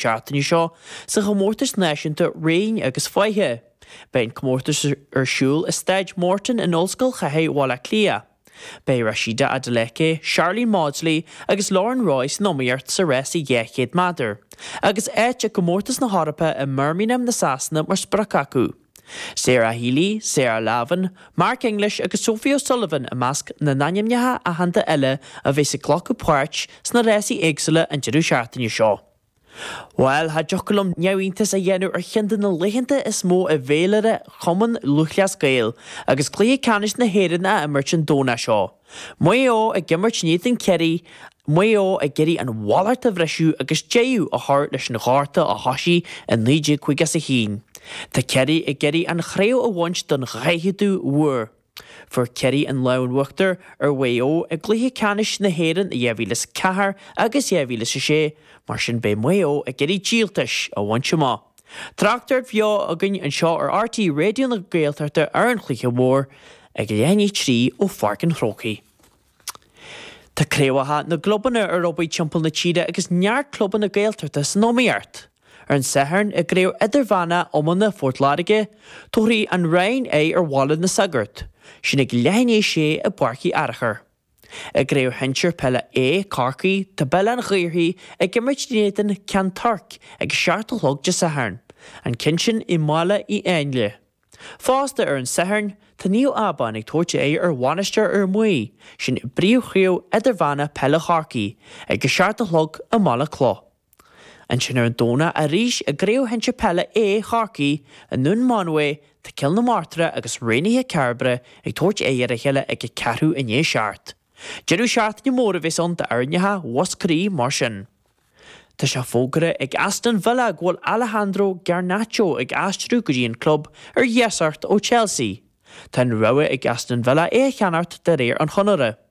Seachtaine seo sa chomórtas náisiúnta Raoin agus Faiche. Beidh an comórtas ar siúl i Staid Morton in Ollscoil Chathair Bhaile Átha Cliath. Beidh Rhasidat Adeleke, Sharlene Mawdsley agus Lauren Roy san iomaíocht sa rás 200 meadar, agus áit i gComórtas na hEorpa i mBirmingham na Sasana mar sprioc acu. Sarah Healy, Sarah Lavin, Mark English agus Sophie O'Sullivan i measc na n-ainmneacha aitheanta eile a bheas ag glacadh páirt sna rásaí éagsúla an deireadh seachtaine seo. Bhail, cha dtiocfadh liom neamhiontas a dhéanamh ar cheann de na laethanta is mó i bhféilire Chumann Lúthchleas Gael agus cluiche ceannais na hÉireann á imirt an Domhnach seo. Maigh Eo ag imirt in éadan Chiarraí, Maigh Eo ag iarraidh an mhallacht a bhriseadh agus deireadh a chur leis an ghorta a thosaigh i 1951. Tá Ciarraí ag iarraidh an chraobh a bhaint don daicheadú huair. Fuair Ciarraí an lámh in uachtar ar Mhaigh Eo i gcluiche ceannais na hÉireann i 2004 agus 2006, mar sin beidh Maigh Eo ag iarraidh díoltas a bhaint amach. Tráchtaireacht bheo againn anseo ar RTÉ Raidió na Gaeltachta ar an chluiche mhór ag a leath i ndiaidh a trí ó Pháirc an Chrócaigh. Tá craobhacha na gclubanna ar obair timpeall na tíre agus neart clubanna na Gaeltachta san iomaíocht. Ar an Satharn i gcraobh idirmheánach iomána Phort Láirge, tabharfaidh An Rinn aghaidh ar Bhaile na Sagart, sin ag leath i ndiaidh a sé i bPáirc Uí Fhearchair. I gCraobh Shinsir Peile A Chorcaí, tá Béal Átha an Ghaorthaidh ag imirt in éadan Ceann Toirc ag a seacht a chlog Dé Sathairn, an ceann sin i mBaile Uí Áinle. Fosta ar an Satharn, tá Naomh Abán ag tabhairt aghaidh ar Mhainistir Fhear Maí, sin i bpríomhchraobh idirmheánach peile Chorcaí, ag a seacht a chlog i mBaile Cloch. Ansin ar an Domhnach arís i gCraobh Shinsir Peile A Chorcaí, i nDún Mánmhaí, tá Cill na Martra agus Raonaithe Cairbre ag tabhairt aghaidh ar a chéile ag a ceathrú i ndiaidh a seacht. Deireadh seachtaine mór a bheas ann d'fhoirneithe Mhúscraí mar sin. Tá sé fógartha ag Aston Villa go bhfuil Alejandro Garnacho ag aistriú go dtí an club ar iasacht ó Chelsea. Tá an rogha ag Aston Villa é a cheannacht de réir an chonartha.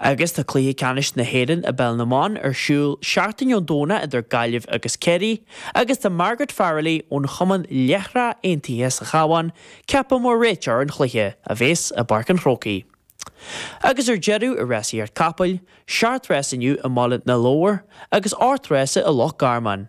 Agus tá Cluiche Ceannais na hÉireann i bPeil na mBan ar siúl seachtain ón Domhnach idir Gaillimh agus Ciarraí agus tá Margaret Farrelly ón chumann Láithreach Aontaithe sa Chabhán ceaptha mar réiteoir an chluiche, a bheas i bPáirc an Chrócaigh. Agus ar deireadh i Rásaíocht Capall, seacht rás inniu i mBaile na Lobhar agus ocht rása i Loch Garman.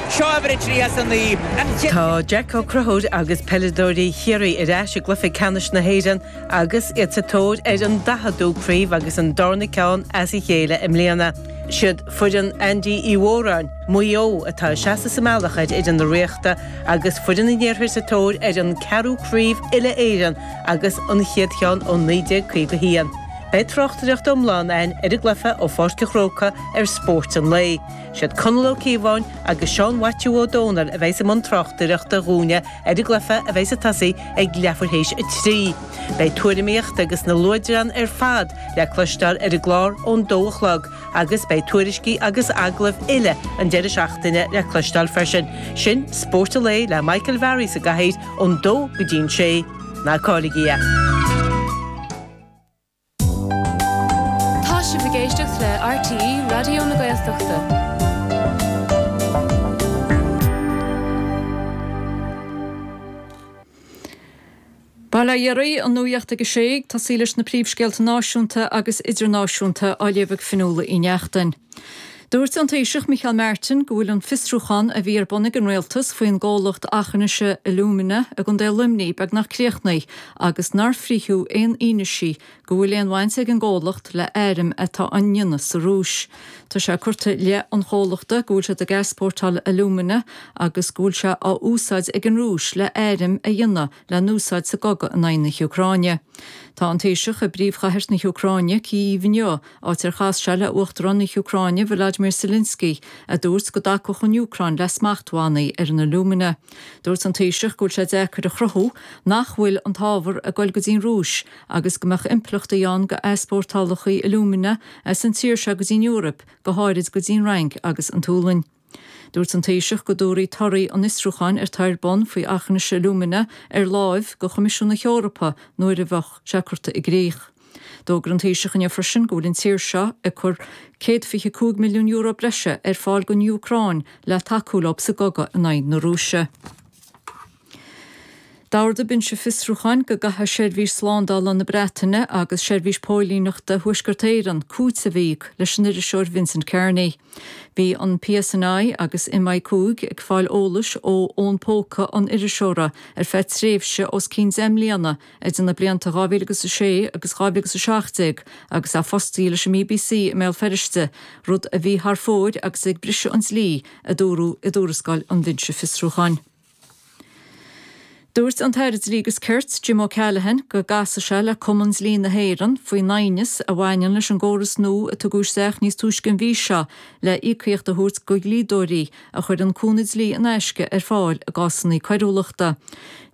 Seo uimhir a trí as a naoi. Tá Jack Ó Conchúir agus peileadóirí Chiarraí ar ais i gcluiche ceannais na hÉireann agus iad sa tóir ar an daicheadú craobh agus an darna ceann as a chéile i mbliana. Siad foireann Andy Uí Mhóráin, Maigh Eo, atá seasta sa mbealach ar fhoireann na Ríochta agus foireann an iarthair sa tóir ar an ceathrú craobh uile-Éireann agus an chéad cheann ó 1951. Beidh tráchtaireacht iomlán ann ar an gcluiche ó Pháirc a Chróca ar Spórt an Lae. Is iad Conall Ó Cíobháin agus Seán Mhaitiú Ó Dónaill a bheidh i mbun tráchtaireachta dhúine ar an gcluiche a bheidh ag tosaí ag leathuair théis a trí. Beidh tuairimíocht agus na luaidreáin ar fad le cloisteáil ar an gclár ón dó a chlog agus beidh tuairiscí agus agallaimh uile an deireadh seachtaine le cloisteáil freisin. Sin Spórt an Lae le Michael Varry sa gcathaoir ón dó go dtí an sé. Ná cailligí é. Tá sibh ag éisteacht le RTÉ Raidió na Gaeltachta. Baile Dhoire an nuacht ag a sé ag tosaí leis na príomhscéalta náisiúnta agus idirnáisiúnta á léamh ag Fionnuala Uí Neachtain. Dúirt an Taoiseach Micheál Martin go bhfuil an fiosrúchán a bhí ar bun ag an Rialtas faoin gcomhlacht Aughinish Alumina i gContae Luimnigh beagnach críochnaithe agus nár frítheadh aon fhianaise go bhfuil aon bhaint ag an gcomhlacht le airm atá á ndéanamh sa Rúis. Tá sé curtha i leith an chomhlachta go bhfuil siad ag easpórtáil alumina agus go bhfuil sé á úsáid ag an Rúis le airm a dhéanamh le n-úsáid sa gcogadh in aghaidh na hÚcráine. Tá an Taoiseach i bpríomhchathair na hÚcráine, Cív, inniu, áit ar chas sé le Uachtarán na hÚcráine Volodymyr Zelensky, a dúirt go dtacódh an Úcráin le smachtbhannaí ar an alumina. Dúirt an Taoiseach go bhfuil sé deacair a chruthú nach bhfuil an t-ábhar ag goil go dtí'n Rúis agus go mbeadh impleachtaí ann dhá n-easpórtálfaí alumina as an tír seo go dtí'n Eoraip, go háirid go dtí'n Fhrainc agus an tSualainn. Dúirt an Taoiseach go dtabharfaí torthaí an fhiosrúcháin atá ar bun faoi Aughinish Alumina ar láimh go Choimisiún na hEorpa nuair a bheadh sé curta i gcrích. D'fhógair an Taoiseach inniu freisin go bhfuil an tír seo ag cur céad fiche cúig milliún euro breise ar fáil don Úcráin le tacú leo sa gcogadh in aghaidh na Rúise. D'ordaigh Binse Fiosrúcháin go gcaithfeadh Seirbhís Slándála na Breataine agus Seirbhís Póilíneachta Thuaisceart Éireann cúiteamh a íoc leis an iriseoir Vincent Kearney. Bhí an PSNI agus MI5 ag fáil eolais ó fhón póca an iriseora ar feadh tréimhse os cionn deich mbliana idir na blianta 2006 agus 2017 agus é fostaithe leis an BBC i mBéal Feirste, rud a bhí thar fóir agus ag briseadh an dlí, a dúradh i dtuarascáil an Bhinse Fiosrúcháin. Dúirt an tAire Dlí agus Cirt, Jim O'Callaghan, go gcasfadh sé le Cumann Dlí na hÉireann faoin aighneas a bhaineann leis an gcóras nua a tugadh isteach níos túisce an mhí seo le íocaíocht a thabhairt go dlíodóirí a chuireann cúnamh dlí in aisce ar fáil i gcásanna coiriúlachta.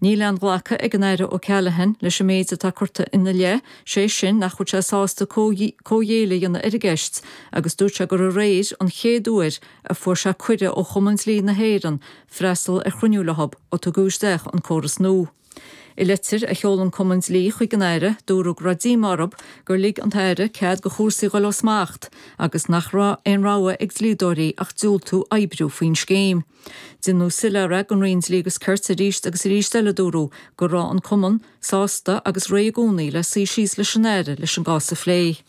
Níl aon ghlacadh ag an Aire O'Callaghan leis an méid atá curtha ina leith, sé sin nach bhfuil sé sásta comhghéilleadh a dhéanamh ar an gceist agus dúirt sé gur aréir an chéad uair a fuair sé cuireadh ó Chumann Dlí na hÉireann freastal ar chruinniú le hOb ó tugadh isteach an córas nua. I leitir a sheol an Cumann Dlí chuig an Aire dúradh go raibh díomá orthu gur lig an tAire cead go chúrsaí dhul ó smacht agus nach raibh aon rogha ag dlíodóirí ach diúltú oibriú faoin scéim. Cé gur iarradh soiléiriú den Roinn Dlí agus Cirt arís agus arís eile dúradh go raibh an Cumann sásta agus réidh i gcónaí le suí síos leis an Aire leis an gcás a phlé.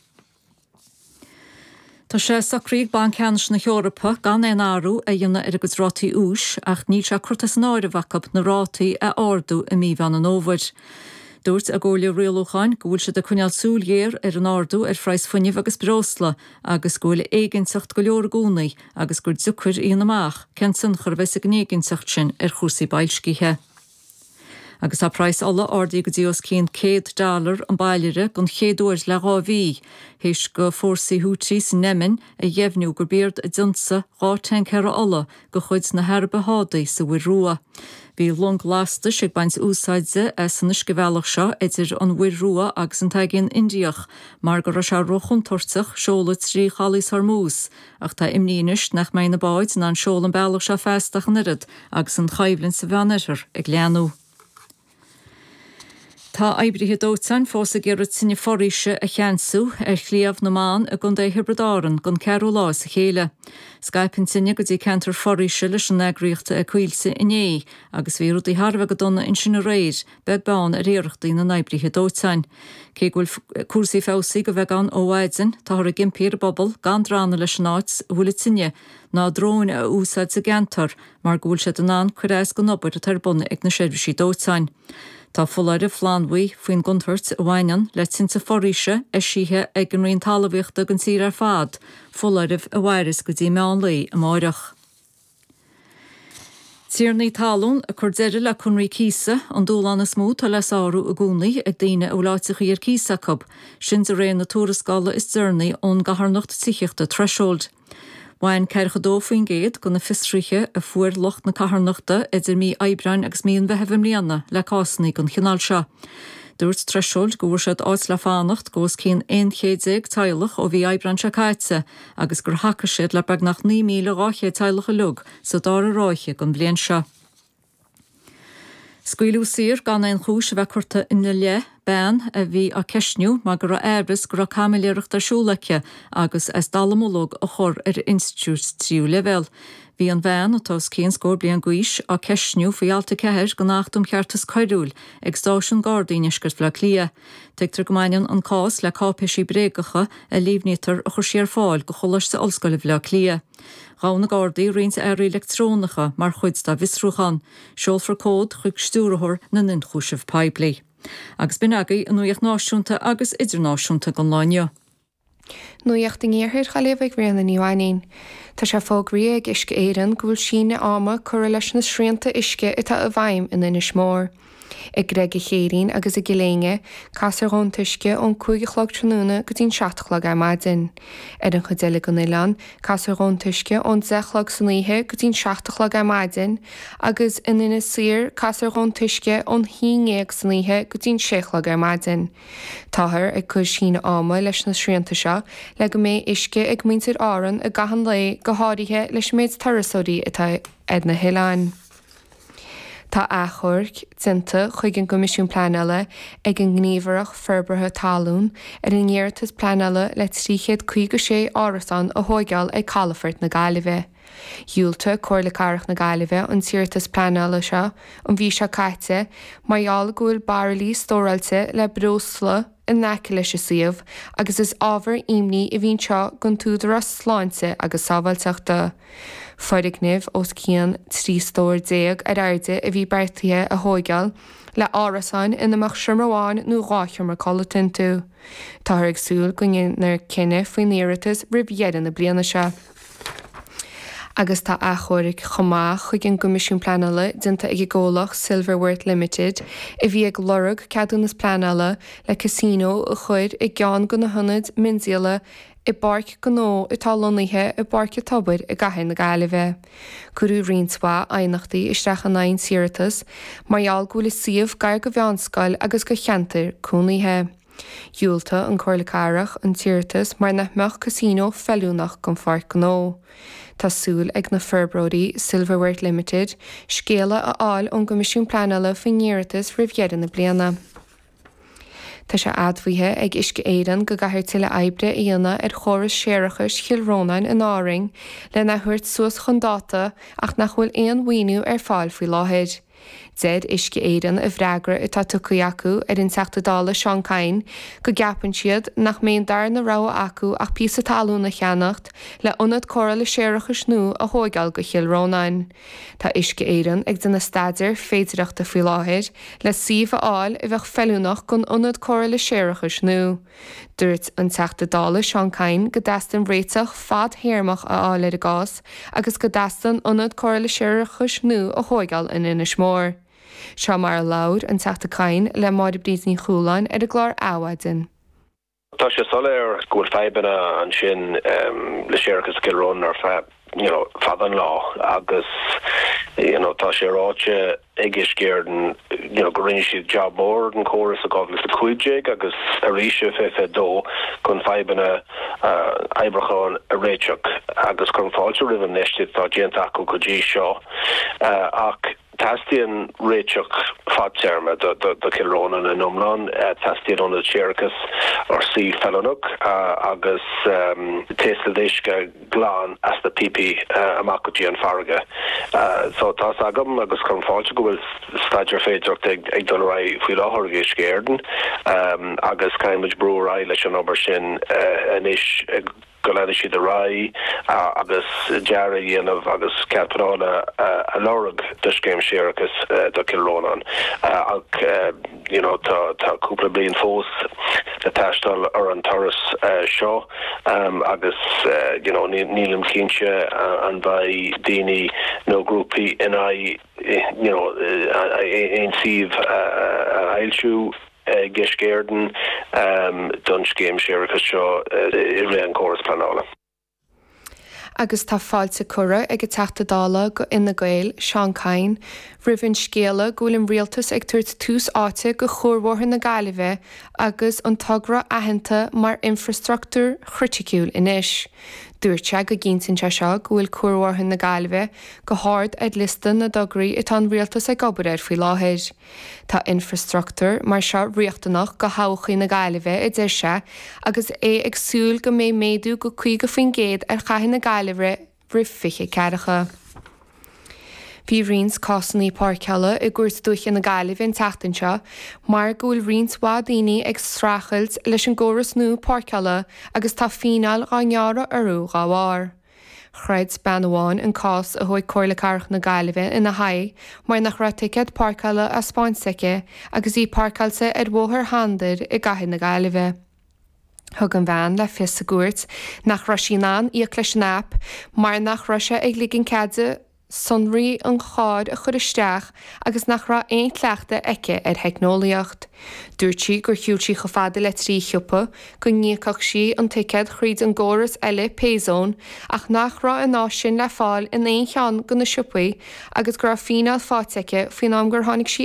Tá sé socraithe ag Banc Ceannais na hEorpa gan aon athrú a dhéanamh ar a gcuid rátaí úis ach níl sé curtha as an áireamh acu na rátaí a ardú i mí Mheán an Fhómhair. Dúirt a gComhairle Rialúcháin go bhfuil siad ag coinneáil súil ghéar ar an ardú ar phraghas fuinnimh agus breosla agus go bhfuil éiginnteacht go leor i gcónaí agus gur deacair a dhéanamh amach cén tionchar a bheidh ag an éiginnteacht sin ar chúrsaí boilscithe. Agus tá praghas ola ardaithe go dtí os cionn céad dollar an bairille den chéad uair le dhá mhí, théis go fhórsaí Houthi san Eimin a dheimhniú gurb iad a d'ionsaigh dhá thancaer ola de chuid na hAraibe Sádaí sa Mhuir Rua. Bhí longa lastais ag baint úsáide as an uiscebhealach seo idir an Mhuir Rua agus an tAigéan Indiach mar go raibh sé ró-chontúirteach seoladh trí Chaolas Hormuz, Ach tá imní anois nach mbeidh na báid in ann seoladh an bealach seo feasta ach an oiread agus an choimhlint sa Mheánoirthear ag leathnú. Tá oibrithe dóiteáin fós ag iarraidh tine foraoise a cheansú ar Shliabh na mBan i gContae Thiobraid Árann don ceathrú lá as a chéile. Scaip an tine go dtí ceantar foraoise leis an eagraíocht Coillte inné agus bhí rudaí thar a bheith go dona ansin aréir beag beann ar iarrachtaí na n-oibrithe dóiteáin. Cé go bhfuil cúrsaí feabhsaithe de bheagán ann ó mhaidin, táthar ag impí ar an bpobal gan drannadh leis an áit a bhfuil an tine ná dróin a úsáid sa gceantar mar go bhfuil siad in ann cur as don obair atá ar bun ag na seirbhísí dóiteáin. Tá foláireamh flannbhuí faoin gcontúirt a bhaineann le tinte foraoise eisithe ag an Roinn Talmhaíochta don tír ar fad, foláireamh a mhaireas go dtí meán lae amáireach. Tiarnaí talún ag cur deireadh le conraí cíosa, an dúshlán is mó atá le sárú i gcónaí ag daoine a bhfuil áiteachaí ar cíos acu, sin de réir na tuarascála is deireanaí ón gcarthanacht tithíochta Threshold. Bhain ceathracha dó faoin gcéad de na fiosruithe a fuair lucht na carthanachta idir mí Aibreáin agus mí an Mheithimh i mbliana le cásanna den chineál seo. Dúirt Threshold go bhfuair siad áit le fanacht go os cionn aon chéad déag teaghlach ó mhí Aibreáin seo caite, agus gur thacaigh siad le beagnach 9,200 teaghlach uilig sa dara ráithe den bhliain seo. Scaoileadh saor gan aon chúis a bheith curtha ina leith, bean a bhí á ceistniú mar go raibh amhras go raibh caimiléireacht ar siúl aici agus as dallamullóg a chur ar institiúid tríú leibhéal. Bhí an bhean, atá os cionn scór bliain d'aois, á ceistniú faoi Alt 4 den Acht um Cheartas Coiriúil ag Stáisiún Gardaí i ndeisceart Bhaile Átha Cliath. Tuigtear go mbaineann an cás le cáipéisí bréagacha a líomhnaítear a chuir sí ar fáil do Choláiste Ollscoile Bhaile Átha Cliath. Ghabh na Gardaí roinnt earraí leictreonacha mar chuid dá bhfiosrúchán. Seolfar comhad chuig Stiúrthóir na nIonchúiseamh Poiblí. Agus b'in agaidh an nuaíocht náisiúnta agus idirnáisiúnta don lá inniu. Nuacht Iarthar na Gaillimhe ag Ríona Ní Mhainín. Tá sé fógraithe ag Uisce Éireann go bhfuil síneadh ama curtha leis na srianta uisce atá i bhfeidhm in Inis Mór, i gCreig a Chéirín agus i gCill Éinne, casfar dhíobh an t-uisce ón cúig a chlog tráthnóna go dtí'n seacht a chlog ar maidin. Ar an chuid eile den oileán, casfar dhíobh an t-uisce ón deich a chlog san oíche go dtí'n seacht a chlog ar maidin agus in Inis Oírr casfar dhíobh an t-uisce ón haon déag san oíche go dtí'n sé a chlog ar maidin. Táthar ag cur síneadh ama leis na srianta seo le go mbeidh uisce ag muintir Árann i gcaitheamh an lae go háirithe leis an méid turasóirí atá ar na hoileáin. Tá achomharc déanta chuig an gCoimisiún Pleanála ag an nGníomhaireacht Forbartha Talún ar a n-iarratas pleanála le 356 árasán a thóigeáil ag calafort na Gaillimhe. Dhiúltaigh Comhairle Cathrach na Gaillimhe an t-iarratas pleanála seo an mhí seo caite mar gheall go bhfuil bairillí stóráilte le breosla in aice leis an suíomh agus is ábhar imní a bhí anseo don tÚdarás Sláinte agus Sábháilteachta. Foirgneamh os cionn 13 stór ar airde a bhí beartaithe a thóigeáil le árasáin ina mbeadh seomra amháin nó dhá sheomra codlata iontu. Táthar ag súil go ndéanfar cinneadh faoin iarratas roimh dheireadh na bliana seo. agus tá achomharc chomh maith chuig an gCoimisiún Pleanála déanta ag an gcomhlacht Silverworth Limited a bhí ag lorg ceadúnas pleanála le casino a chur i gceann de na hionaid miondíola i bpáirc gnó atá lonnaithe i bPáirc an Tobair i gcathair na Gaillimhe. Cuireadh roinnt mhaith aighneachtaí isteach in aghaidh an t-iarratas mar gheall go bhfuil an suíomh gar go mheánscoil agus go cheantar cónaithe. Dhiúltaigh an Chomhairle Cathrach an t-iarratas mar nach mbeadh Casino feiliúnach don Pháirc Gnó. Tá súil ag na forbróirí, Silverworth Limited, scéala a fháil ón gCoimisiún Pleanála faoin iarratas roimh dheireadh na bliana. Tá sé admhaithe ag Uisce Éireann go gcaithfear tuilleadh oibre a dhéanamh ar chóras séarachais Chill Rónáin in Árainn lena thabhairt suas chun dáta ach nach bhfuil aon mhaoiniú ar fáil faoi láthair. Deir Uisce Éireann i bhfreagra atá tugtha acu ar an tSeanadóir Seán Kyne go gceapann siad nach mbeidh an darna rogha acu ach píosa talún a cheannacht le Ionad Cóireála Séarachais nua a thóigeáil go Chill Rónáin. Tá Uisce Éireann ag déanamh staidéar féidireachta faoi láthair le suíomh a fháil a bheadh feiliúnach don Ionad Cóireála Séarachais nua. Dúirt an Teachta Dála Seán Kyne go dteastaíonn réiteach fad-théarmach a fháil ar an gcás agus go dteastaíonn Ionad Cóireála Séarachais nua a thóigeáil in Inis Mór. Seo mar a labhair an Teachta Kyne le Máire Bríd Ní Chualáin ar an gclár Adhmhaidin. Tá sé soiléir go bhfuil fadhbanna ansin le séarachas i gCill Rónáin ar feadh. you know, fada an lá agus you know, tá sé ráite ag Uisce Éireann you know, go ndearna siad jab mór den córas i 2015 agus arís ar fiche fiche dó chun fadhbanna oibriúcháin a réiteach agus cuirim fáilte roimh an infheistíocht atá déanta acu go dtí seo ach Teastaíonn réiteach fadtéarmach do Chill Rónáin in iomlán. Teastaíonn ionad séarachais ar suíomh feiliúnach agus taoscadh uisce glan as na píopaí amach go dtí an farraige. Tá's agam agus cuirim fáilte go bhfuil staidéar féidireachta ag dul ar aghaidh faoi láthair ag Uisce Éireann agus caithfidh muid brú ar aghaidh leis an obair sin anois. go leanfaidh siad ar aghaidh agus dearadh a dhéanamh agus cead pleanála a lorg do scéim séarachais do Chill Rónáin ach you know tá tá cúpla bliain fós le taisteal ar an turas seo agus you know nílim cinnte an bheidh daoine nó grúpaí in aghaidh you know aon suíomh a fhoilsiú. ag Uisce Éireann don scéim séarachais seo i rith an córas pleanála. Agus tá fáilte curtha ag an Teachta Dála go Fhine Gael, Seán Kyne, roimh an scéala go bhfuil an Rialtas ag tabhairt tús áite go chuarbhóthar na Gaillimhe agus an togra aitheanta mar infreastruchtúr chriticiúil anois. Dúirt sé go gcinntíonn sé seo go bhfuil cuarbhóthar na Gaillimhe go hard ar liosta na dtograí atá an Rialtas ag obair air faoi láthair. Tá infreastruchtúr mar seo riachtanach go thodhchaí na Gaillimhe, a deir sé, agus é ag súil go mbeidh méadú de 50% ar Chathair na Gaillimhe roimh 2040. Bhí roinnt cásanna páirceála i gCúirt Dúiche na Gaillimhe an tseachtain seo mar go bhfuil roinnt mhaith daoine ag streachailt leis an gcóras nua páirceála agus tá fíneáil dhá ngearradh orthu dhá bharr. Throid bean amháin an cás a thug Comhairle Cathrach na Gaillimhe ina haghaidh mar nach raibh ticéad páirceála á spáint aici agus í páirceáilte ar Bhóthar Shandair i gCathair na Gaillimhe. Thug an bhean le fios sa gcúirt nach raibh sí in ann íoc leis an aip mar nach raibh sé ag ligean cead di sonraí an chairr a chur isteach agus nach raibh aon chleachtadh aici ar theicneolaíocht. Dúirt sí gur shiúil sí chomh fada le trí shiopa, go n-íocfadh sí an ticéad thríd an gcóras eile Payzone ach nach raibh an áis sin le fáil in aon cheann go na siopaí agus go raibh fíneáil faighte aici faoin am gur tháinig sí